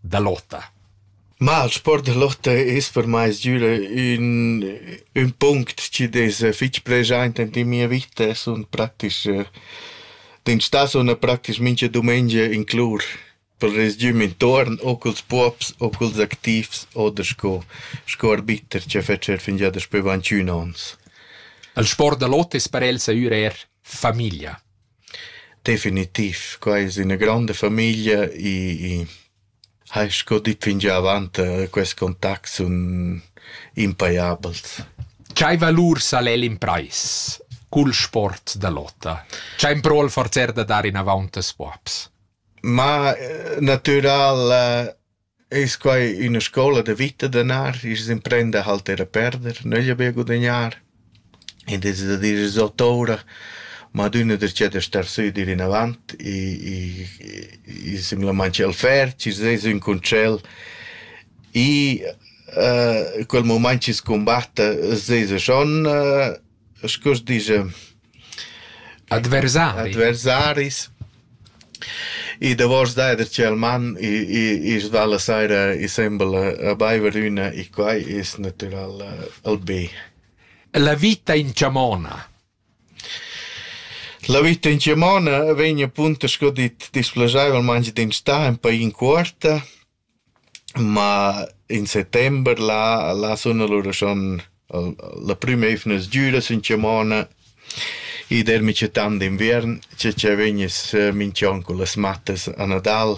da Lotta. Ma il sport da Lotta es per mai sgüra ün ün punct chi'd es fich preschaint in mia vita, sun praktisch d'instà sun praktisch mincha dumengia in clur për resgüm intuorn o culs puops o culs activs oder sco sco arbiter cha fetscher fingià daspü vancün ons. Il sport da Lotta es per el sahür eir famiglia. Definitiv, quai es üna gronda famiglia e e hai sco dit fingià avant quest contact sun impajabels. Chai valur sal el imprais cul sport da lotta? Chà impro'l forzer da dar inavaunt a scuabs? Ma natüral Es quai üna scoula da vita danar, i's imprenda a halter e perder, nöglia be gudagnar. Id es da dir es ot oura, ma adüna darcheu da star sü e dir inavant e e simplamaing ch'el ferch, i's es ün concel e quel mumaint chi's cumbatta s'esa schon Scu as disch? Adversaris. Adversaris. I davosch d'eir dad tgel man, i's va la saira insembel a baiver üna, i quai es natüral ël be. La vita in chamona. La vita in chamona vegn appunto sco dit displaschaivelmaing d'instà ün pa in cuorta Ma in settember là là suna lura schon la prüma eivna sgüra sün chamona. I dermi cia tant d'inviern, cia cia vegniss minch'on cullas mattas a Nadal.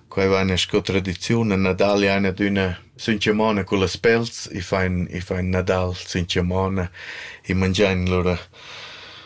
Quai vaina sco tradiziun, a Nadal jaina adüna sün chamona cullas pels, i fain i fain Nadal sün chamona, i mangiain lura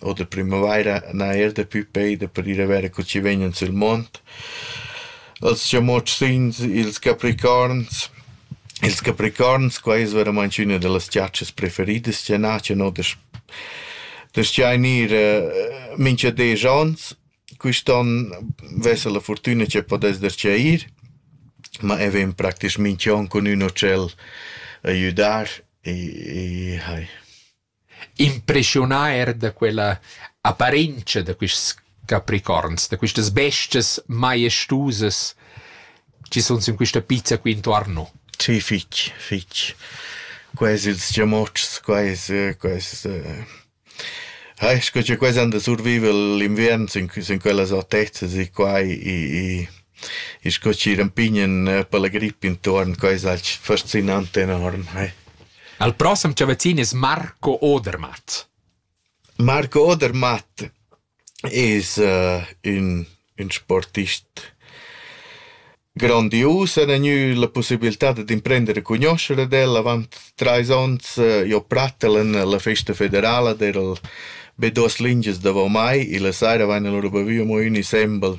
Oter primavaira n'ha eir daplü peida per ir a verer co chi vegnan sül mond. Els chamotschins, ils capricorns. Ils capricorns, qua es veramaing üna da las giatschas preferidas chi n'a, chi n'ho da sch- da schainir mincha desch ons. Quist'on vesa la furtüna chi pudess darcheu ir, ma e ven praktisch minch'on cun ün ucell a güdar e e hai. Impreschiunà eir da quella apparentscha da quists capricorns, da quistas bestias maestusas chi sun sün quista pizza qui intuorn no. Sì, fich, fich. Quels ils giamotschs, quels, quels eh sco cha quels han da surviver l'inviern sün sün quellas autezas e quai i i i sco chi rampignan per la grip intuorn, quai es alch fascinant enorm, eh. Al prossem chavazin es Marco Odermatt. Marco Odermatt es uh, ün, ün sportist grandius, en ha gnü la pussibilità dad imprender a cugnuoscher ad el avant trais ons eh, jo prattel en la festa federala der be duas lingias davo mai e la saira vaina lura bavü amo ün insembel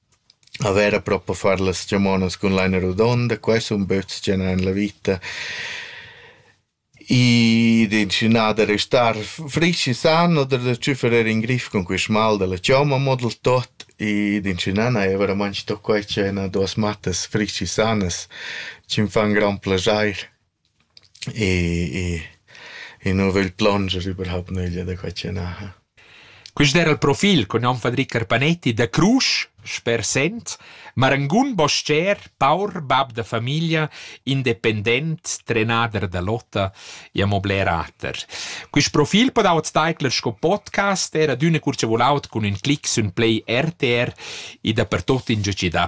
A vera propa far las chamonas cun laina rodonda, quai sun böts chi an la vita. Id inscunà da restar frisch e san o da tschüfferer in grif cun quist mal da la chomma mo dal tot. Id inscunà n'haja varamantg sto quai ch'ai üna duos mattas frisch e sanas, chi'm fan grand plaschair. E i nu vögl plonger überhaupt nöglia da quai chi naja. Quist era il profil cun nom Fadri Carpanetti da Crusch, sper Sent, marangun bostger, paur bab da famiglia, independent, trenader da lotta e amo bler ater. Quist profil podau't taicler sco podcast, era d'üna cur cha voulaut cun ün clic sün play RTR e dapertuot ingià chi dà.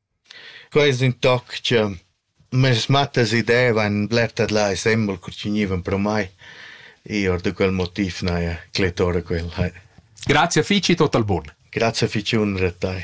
Quai es ün toc cha meis mattas idevan bler tadlà e sembel co chi gnivan pro mai. I or da quel motiv n'haja clettora quel. Grazia fich e tot al bun. Grazia fich unra a tai.